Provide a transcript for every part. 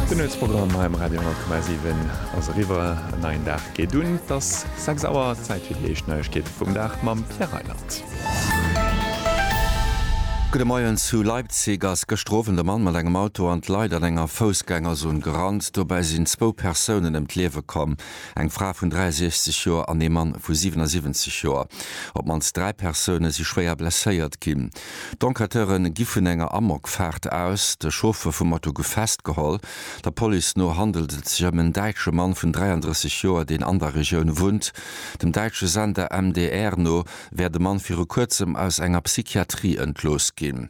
Den Nuetsprogramm hei um Radio 10,7 ass eriwwer. En neien Dag geet un. Et ass 6 Auer, Zäit fir déi éischt Neiegkeete vum Dag mam Pierre Reyland. Gudde Moien, Zu Leipzig ass gëschter Owend e Mann mat engem Auto an d'Leit an enger Foussgängerzon gerannt. Dobäi sinn zwou Persounen ëm d'Liewe komm, eng Fra vun 63 Joer an ee Mann vu 77 Joer. Op d'mannst dräi Persoune si schwéier blesséiert ginn. D'Enquêteure gi vun enger Amokfaart aus. De Chauffer vum Matto gouf festgeholl. Der Police no handelt et sech ëm en däitsche Mann vun 33 Joer, deen an der Regioun wunnt. Dem däitsche Sender MDR no wär de Mann viru kuerzem aus enger Psychiatrie entlooss ginn.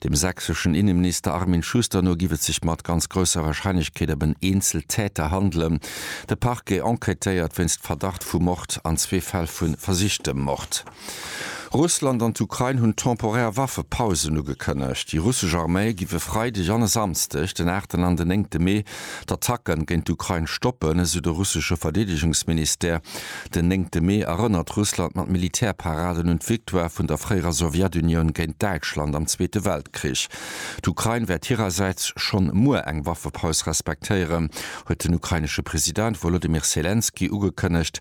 Dem sächseschen Inneminister Armin Schuster no giff et sech mat ganz grousser Warscheinlechkeet ëm en Eenzeltäter handelen. De Parquet enquêtéiert wéinst Verdacht vu Mord an zwee Fäll vu versichtem Mord. Russland an d'Ukrain hunn temporär Waffepausen ugekënnegt. Déi russesch Arméi giff e Freideg an e Samsdeg, den aachten an den néngte Mee, d'Attacken géint d'Ukrain stoppen, esou de russesche Verdeedegungsministère. Den néngte Mee erënnert Russland mat Militärparaden un d'Victoire vun der fréierer Sowjetunioun géint Däitschland am Zweete Weltkrich. D'Ukrain wäert hirersäits schonn muer eng Waffepaus respektéieren, huet den ukrainesche President Wolodymyr Selenskyj ugekënnegt.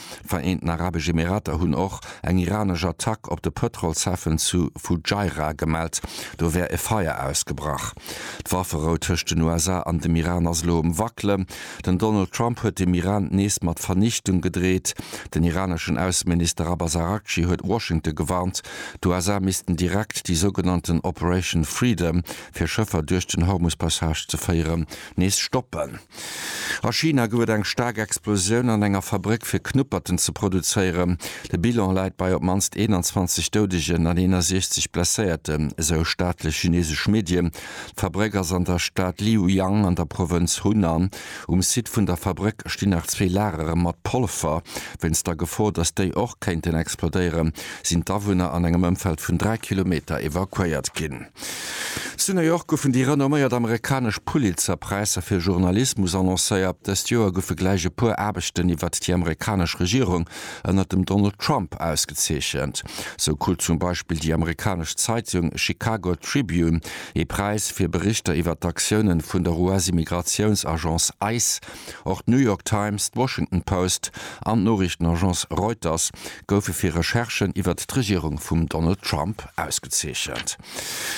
D'Vereenten Arabesch Emirater hunn och eng iranesch Attack op de Pëtrolshafen zu Fujairah gemellt. Do wär e Feier ausgebrach. D'Wafferou tëscht den USA an dem Iran ass elo um Wackelen. Den Donald Trump huet dem Iran nees mat Vernichtung gedreet. Den iraneschen Ausseminister Abbas Araghchi huet Washington gewarnt, d'USA missten direkt déi sougenannten Operation Freedom, fir Schëffer duerch den Hormus-Passage ze féieren, nees stoppen. A China gouf et eng staark Explosioun an enger Fabrëck fir Knupperten ze produzéieren. De Bilan läit bei op d'mannst 21 Doudegen an 61 Blesséierten, esou staatlech chinesesch Medien. D'Fabrëck ass an der Stad Liuyang an der Provënz Hunan. Um Site vun der Fabrëck stinn nach zwee Lagere mat Polver. Wéinst der Gefor, datt déi och kéinten explodéieren, sinn d'Awunner an engem Ëmfeld vun 3 Kilometer evakuéiert ginn. Zu New York goufen déi renomméiert amerikanesch Pulitzer-Präisser fir Journalismus annoncéiert. Dëst Joer goufe gläich e puer Aarbechten iwwert déi amerikanesch Regierung ënnert dem Donald Trump ausgezeechent. Sou krut zum Beispill déi amerikanesch Zeitung Chicago Tribune ee Präis fir Berichter iwwert d'Aktiounen vun der US-Immigratiouns-Agence ice. Och d'New York Times, d'Washington Post an d'Noriichtenagence Reuters goufe fir Recherchen iwwert d'Regierung vum Donald Trump ausgezeechent.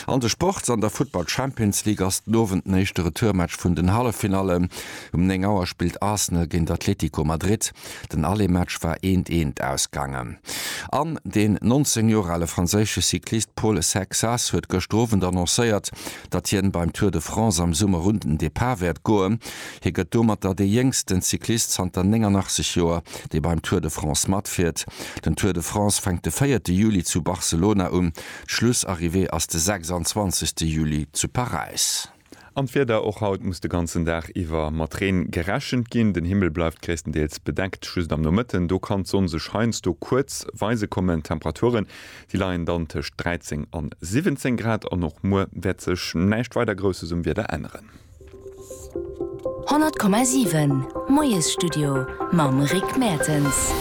An de Sports, An der Futtball Champions League ass den Owend den éischte Retourmatch vun den Halleffinallen. Um 9 Auer spillt Arsenal géint Atlético Madrid. Den Aller-Match war 1, 1 ausgaangen. An den 19 Joer ale franséische Cyclist Pol Asecxas huet gëschter Owend annoncéiert, datt hien beim Tour de France am Summer un den Depart wäert goen. Hie gëtt domatter dee jéngsten Cyclist zanter 89 Joer, dee beim Tour de France matfiert. Den Tour de France fänkt de véierte Juli zu Barcelona un, d'Schlussarrivée ass de 26 Juli zu Paräis. An d'Wieder, Och haut muss de ganzen Dag iwwer mat Reen gerechent ginn. Den Himmel bleift gréisstendeels bedeckt, just am Nomëtten do kann d'Sonn sech heiansdo kuerz weise kommen. D'Temperaturen Si leien dann tëscht 13 an 17 Grad an och muer wäert sech näischt weider Grousses um Wieder änneren. 100,7 Moiesstudio mam Rick Mertens.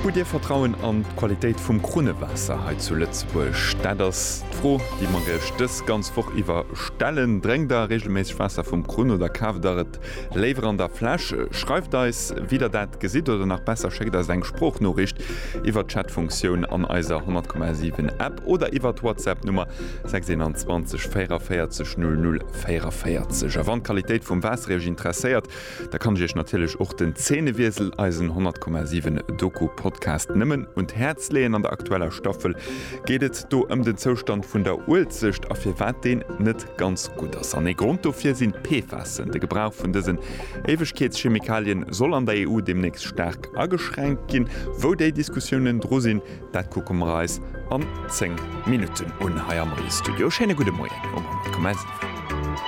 Hutt Dir Vertrauen an d'Qualitéit vum Krunnewaasser hei zu Lëtzebuerg? Dat ass d'Fro, déi mer Iech dës ganz Woch iwwer stellen. Drénkt Der reegelméisseg Waasser vum Krunn oder kaaft Der et? Léiwer an der Fläsch? Schreift eis wéi der dat gesitt oder nach besser schéckt eis eng Sproochnoriicht iwwert d'Chatfunktioun an eiser 100,7 App oder iwwert d'Whatsapp Nummer 621 44 00 44. A wann d'Qualitéit vum Waasser iech interesséiert, da kann ech iech natierlech och den Zeenewiesel, eisen 100,7 Doku Podcast nëmmen un d'Häerz leeën. An der aktueller Staffel geet et do ëm den Zoustand vun der Uelzecht a firwat deen net Ganz gutt ass, an ee Grond dofir sinn d'PFASen. De Gebrauch vun dësen Éiwegkeetschemikalien soll an der EU deemnächst staark ageschränkt ginn. Wou déi Diskussiounen dru sinn, dat kucke mer eis an 10 Minutten un hei am Studio. Schéine gudde Moien um Moment Kommezifo.